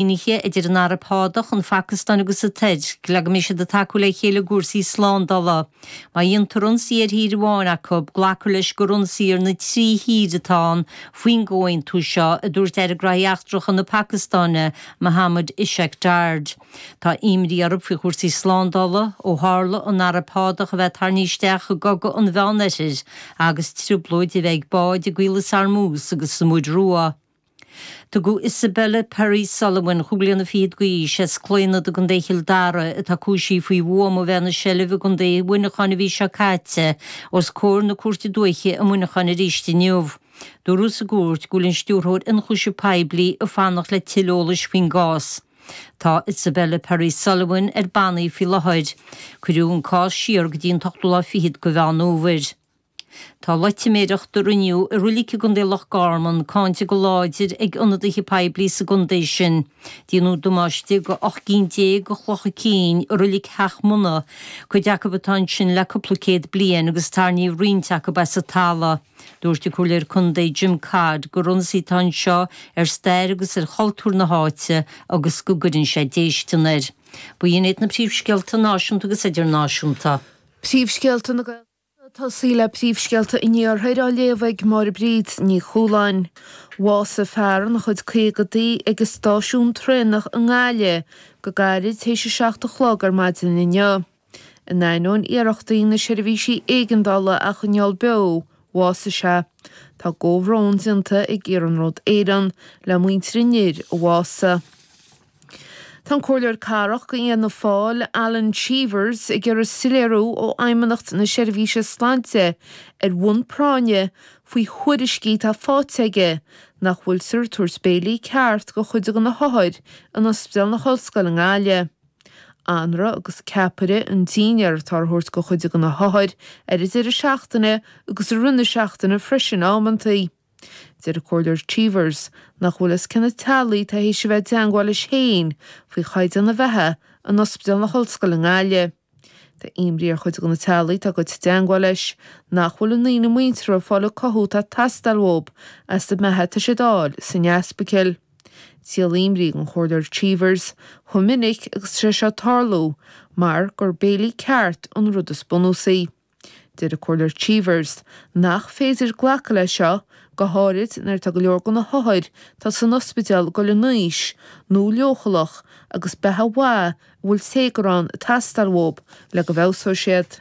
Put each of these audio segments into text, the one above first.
Sínithe idir an Araib Shádach, an Phacastáin agus an Tuirc, le go mbeidh siad ag tacú le chéile i gcúrsaí slándála. Má dhéantar ionsaí ar thír amháin acu, glacfar leis gur ionsaí ar na trí thír atá ann faoin gcomhaontú seo, a dúirt Aire Gnóthaí Eachtracha na Pacastáine, Mohammad Ishaq Dar. Tá imní orthu faoi chúrsaí slándála, ó tharla an Araib Shádach a bheith tarraingthe isteach i gCogadh an Mheánoirthir, agus trioblóid a bheith ag báid i gCaolas Hormuz agus sa Mhuir Rua. Tugadh Isabelle Perry Sullivan cúig bliana fichead d'aois as Claonadh i gContae Chill Dara atá cúisithe faoi bhuama a bheith ina seilbh i gContae Mhuineacháin an mhí seo caite os comhair na Cúirte Dúiche i Muineachán arís inniu. Dúradh sa gcúirt go bhfuil an Stiúrthóir Ionchúiseamh Poiblí ag fanacht le tuilleadh eolais faoin gcás. Tá Isabelle Perry Sullivan ar bannaí faoi láthair. Cuireadh an cás siar go dtí an t-ochtú lá fichead de Mheán Fhómhair. Tá loitiméireacht a rinneadh i roilic i gContae Loch Garman cáinte go láidir ag ionadaithe poiblí sa gcontae sin. Díonadh damáiste do 18 gcinn de chlocha cinn i roilic Theach Munna, cuid acu atá ansin le cúpla céad bliain agus tarrníodh roinnt acu as an tala. Dúirt an Comhairleoir Contae Jim Codd gur ionsaí atá anseo ar stair agus ar chultúr na háite agus go gcuireann sé déistean air. B'in iad na príomhscéalta náisiúnta agus idirnáisiúnta. Príomhscéalta na. Ag tosaí le príomhscéalta an iarthair á léamh ag Máire Bríd Ní Chualáin. Bhásaigh fear ina chuid caogadaí ag an stáisiún traenach i nGaillimh go gairid théis a seacht a chlog ar maidin inniu. In ainneoin iarrachtaí na seirbhísí éigeandála a choinneáil beo, bhásaigh sé. Tá a gcomhbhrón déanta ag Iarnród Éireann le muintir an fhir a bhásaigh. Tá an Comhairleoir Cathrach d'Fhianna Fáil, Alan Cheevers, ag iarraidh soiléiriú ó Fheidhmeannacht na Seirbhíse Sláinte ar bhonn práinne faoi thuairiscí atá faighte aige nach bhfuiltear ag tabhairt béilí ceart do chuid de na hothair in Ospidéal na hOllscoile i nGaillimh. Anraith agus ceapaire an dinnéar atá á thabhairt do chuid de na hothair ar an deireadh seachtaine agus i rith na seachtaine freisin amanntaí. Deir an Comhairleoir Cheevers nach bhfuil a fhios cé na teaghlaigh atá tar éis a bheith i dteangmháil leis féin faoi chaighdeán na beatha in Ospidéal na hOllscoile i nGaille. Tá imní ar chuid de na teaghlaigh atá gaibhte i dteangmháil leis nach bhfuil a ndaoine muinteartha ag fáil an cothú atá ag teastáil uathu as an mbeatha atá siad a fháil san ospidéal. Is díol imní don Chomhairleoir Cheevers chomh minic agus atá sé seo ag tarlú mar gur béilí ceart an rud is bunúsaí. Deir an Comhairleoir Cheevers nach féidir glacadh leis seo, go háirithe nuair atá go leor de na hothair atá san ospidéal ag dul in aois nó leochaileach agus beatha mhaith a bhfuil téagar ann ag teastáil uathu le go bhfeabhsóidh siad.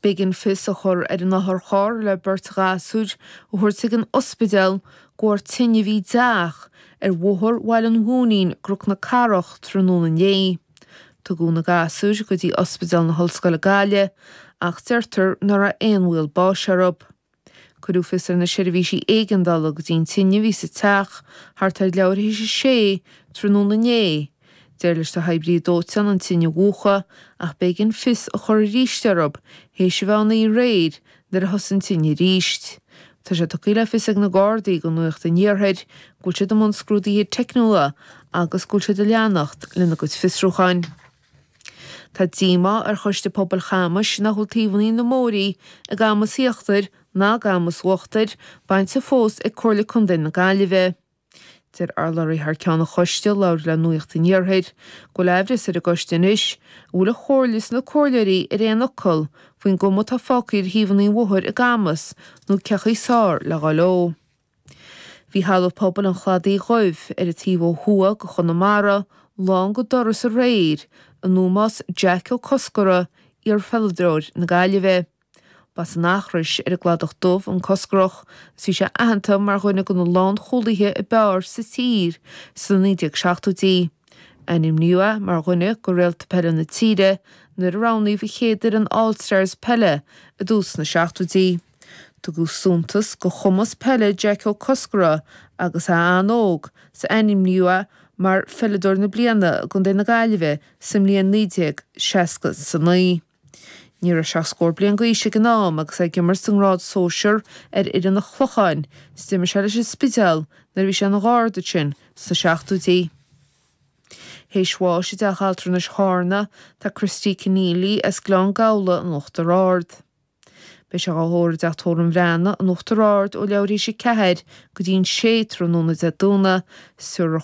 B'éigean fios a chur ar an otharcharr le beirt ghasúir a thabhairt chuig an ospidéal de bharr tine a bhí i dteach ar Bhóthar Bhaile an Mhóinín i gCnoc na Cathrach tráthnóna inné. Tugadh na gasúir go dtí Ospidéal na hOllscoile Gaillimhe ach deirtear nach raibh aon bhaol báis orthu. Cuireadh fios ar na seirbhísí éigeandála go dtí an tine a bhí sa teach thart ar leathuair théis a sé tráthnóna inné. D'éirigh leis na hoibrithe dóiteáin an tine a mhúchadh ach b'éigean fios a chur arís orthu théis a naoi aréir Nuair a thosaigh an tine arís. Tá sé tugtha le fios ag na Gardaí do Nuacht an Iarthair go bhfuil siad i mbun scrúdaithe teicniúla agus go bhfuil siad ag leanacht lena gcuid fiosrúcháin. Tá díomá ar Choiste Pobail Chamais nach bhfuil taobhanna na mbóithrí i gCamas Íochtair ná i gCamas Uachtair bainte fós ag Comhairle Contae na Gaillimhe. Deir urlabhraí thar ceann an choiste a labhair le Nuacht an Iarthair go bhfuil amhras ar an gcoiste anois an bhfuil an chomhairle is na comhairleoirí ar aon fhocal faoin gcuma atá fágtha ar thaobhanna an bhóthair i gCamas nó cé chaoi is fearr le gabháil leo. Bhí Halla Pobail an Chladaigh Dhuibh, ar an taobh ó thuaidh de Chonamara, lán go doras aréir in ómós Jack Ó Cosgara, iarpheileadóir na Gaillimhe. Ba as an Eachrois, ar an gCladach Dubh, an Cosgarach, agus bhí sé aitheanta mar dhuine de na lánchúlaithe ab fhearr sa tír sna 1970idí. Ainmníodh é mar dhuine de réalta peile na tíre nuair a roghnaíodh an chéad fhoireann All-Stars peile i dtús na 70idí. Tugadh suntas do chumas peile Jack Ó Cosgara agus é an-óg, agus ainmníodh é mar Pheileadóir na Bliana i gContae na Gaillimhe sa mbliain 1969. Ní raibh sé ach scór bliain d'aois ag an am agus é ag imirt sa ngrád sóisear ar fhoireann an Chlocháin, is d'imir sé leis an Spidéal nuair a bhí sé ina gharda ansin sna seachtóidí. Théis bháis i dteach altranais Charna, tá Christy Conneely as Gleann Gabhla in Uachtar Ard. Beidh sé á thórramh i dteach Tórraimh an Bhreathnaigh in Uachtar Ard ó leathuair théis a ceathair go dtí an sé tráthnóna Dé Domhnaigh, is